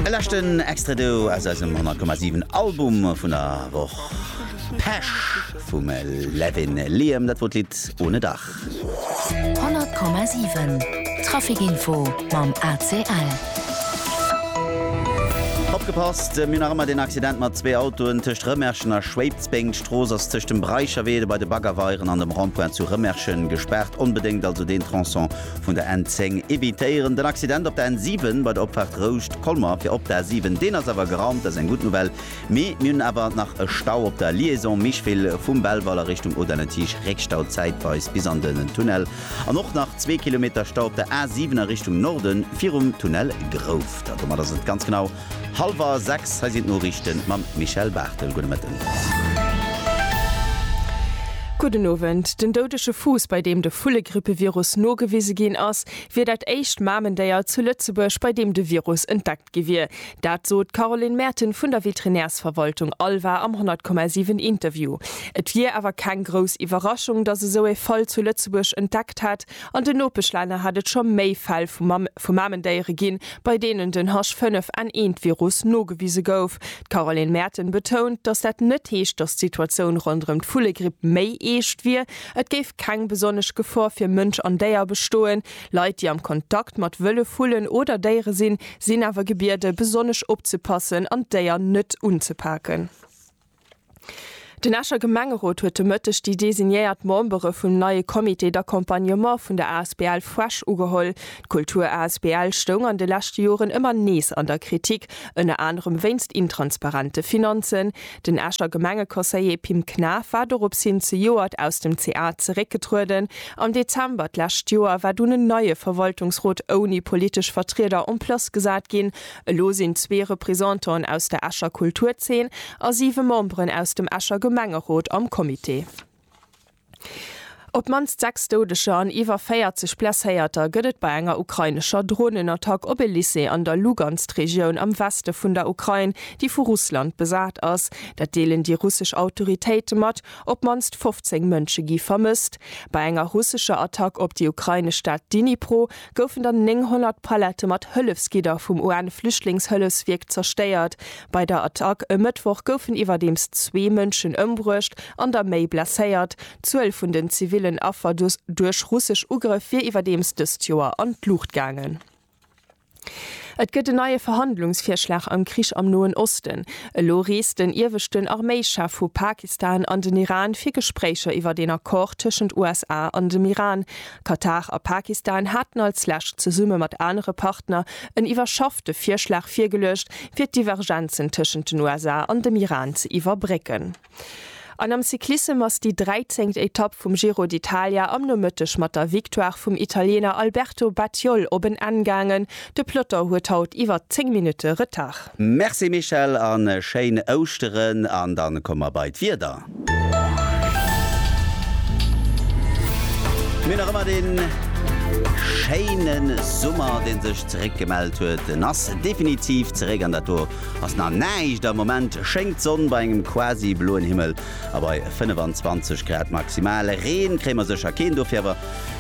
E leschten Extrait do aus eisem 100,7 Album vun der Woch, Pesch vum Levin Liam, dat wor d'Lidd Ohne Dach. 100,7 Trafic Info mam ACL. Opgepasst, Mir hunn nach ëmmer deen Accident mat zwee Autoen tëscht Rëmerschen a Schwéidsbeng. D'Strooss ass tëscht dem Breicherwee, dobei de Baggerweieren an dem Rond-point zu Rëmerschen gespaart. Onbedéngt also deen Tronçon vun der N10 evitéieren. Den Accident op der N7 bei der Opfaart Rouscht, Colmer fir op der A7, deen ass awer geraumt, dat ass eng gutt Nouvelle. Mee mir hunn awer nach e Stau op der Liaison Micheville vum Belval a Richtung Audun-le-Tiche, Réckstau zäitweis bis an den Tunnel an och nach zwee Kilometer Stau op der A7 a Richtung Norden virum Tunnel Grouft. A domat ass et ganz genau. Halwer 6, hei sinn d'Noriichten mam Michèle Barthel. Gudde Mëtten. Gudden Owend. Den doudege Fuuss, bei deem de Vullegrippevirus nogewise ginn ass, wier dat éischt Mamendéier zu Lëtzebuerg, bei deem de Virus entdeckt gi wier. Dat sot d'Caroline Merten vun der Veterinärsverwaltung Alva am 100,7 Interview. Et wier awer keng grouss Iwwerraschung, datt esou ee Fall zu Lëtzebuerg entdeckt hätt, An den Nopeschlänner hätt et scho méi Fäll vu Mamendéiere ginn, bei deenen den H5N1-Virus nogewise gouf. D'Caroline Maerten betount, datt dat net heescht, datt d'Situatioun ronderëm d'Vullegripp méi eescht wier. Et géif keng besonnesch Gefor fir Mënsch an Déier bestoen. Leit, déi am Kontakt mat wëlle Vullen oder Déiere sinn, sinn awer gebiede besonnesch opzepassen an d'Déier net unzepaken. Den Escher Gemengerot huet de Mëtteg déi designéiert Membere vum neie Comité d'accompagnement vun der asbl Fresh ugeholl. D'Kultur asbl stoung an de leschte Joren ëmmer nees an der Kritik, ënner anerem wéinst intransparente Finanzen. Den Escher Gemengeconseiller Pim Knaff war dorops hin zejoert aus dem ca zeréckgetrueden. Am Dezember d'lescht Joer war dunn en neie Verwaltungsrot ouni politesch Vertrieder en place gesat ginn. Elo sinn zwee Représentanten aus der Escher Kulturzeen a siwe Memberen aus dem Escher Gemengerot am Comité. Op d'mannst 6 Doudeger an iwwer 40 Blesséierter gëtt et bei enger ukrainescher Dronenattack op e Lycée an der Lugansk-Regioun am Weste vun der Ukrain, déi vu Russland besat ass. Dat deelen déi russesch Autoritéite mat. Op d'mannst 15 Mënsche gi vermësst. Bei enger russescher Attack op déi ukrainesch Stad Dnipro, goufen der 900 Pallette mat Hëllefsgidder vum UN-Flüchtlingshëllefswierk zerstéiert. Bei der Attack e Mëttwoch goufen iwwerdeems zwee Mënschen ëmbruecht an der méi blesséiert. D'Zuel vun den zivillen Affer duerch russesch Ugrëff wier iwwerdeems dëst Joer an d'Luucht gaangen. Et gëtt en neie Verhandlungsvirschlag am Krich am Noen Osten. Elo reest den ieweschten Arméischef vu Pakistan an den Iran fir Gespréicher iwwert een Accord tëschent USA an dem Iran. Katar a Pakistan haten als Lescht zesumme mat anere Partner en iwwerschaffte Virschlag virgeluecht, fir d'Divergenzen tëschent den USA an dem Iran ze iwwerbrécken. An am Cyclissem ass déi dräizengt Etapp vum Giro d'Italia am Nomëtteg mat der Victoire vum Italiener Alberto Battiol op en Enn gaangen. De Ploton huet haut iwwer 10 Minutte Retard. Merci Michèle an schéin Ouschteren an dann komme mer bei d'Wieder. Mir hunn nach ëmmer den schéinen Summer den sech zeréck gemellt huet. En ass definitiv zeréck an dat do ass nach näischt. Am Moment schéngt d'Sonn bei engem quasi bloen Himmel a bei 25 Grad maximal. Reen kréie mer sécher keen, dofir awer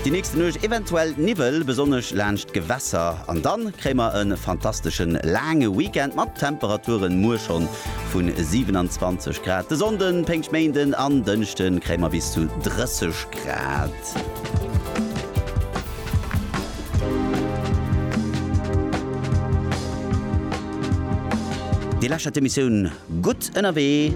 Déi nächste Nuecht eventuell Niwwel, besonnesch laanscht d'Gewässer. An dann kréie mer e fantasteschen laange Weekend mat Temperaturen muer schonn vu 27 Grad. De Sonnden, Péngschtméinden an Dënschden kréie mer bis zu 30 Grad. Dir läschert d'Emissioun Gutt ënnerwee.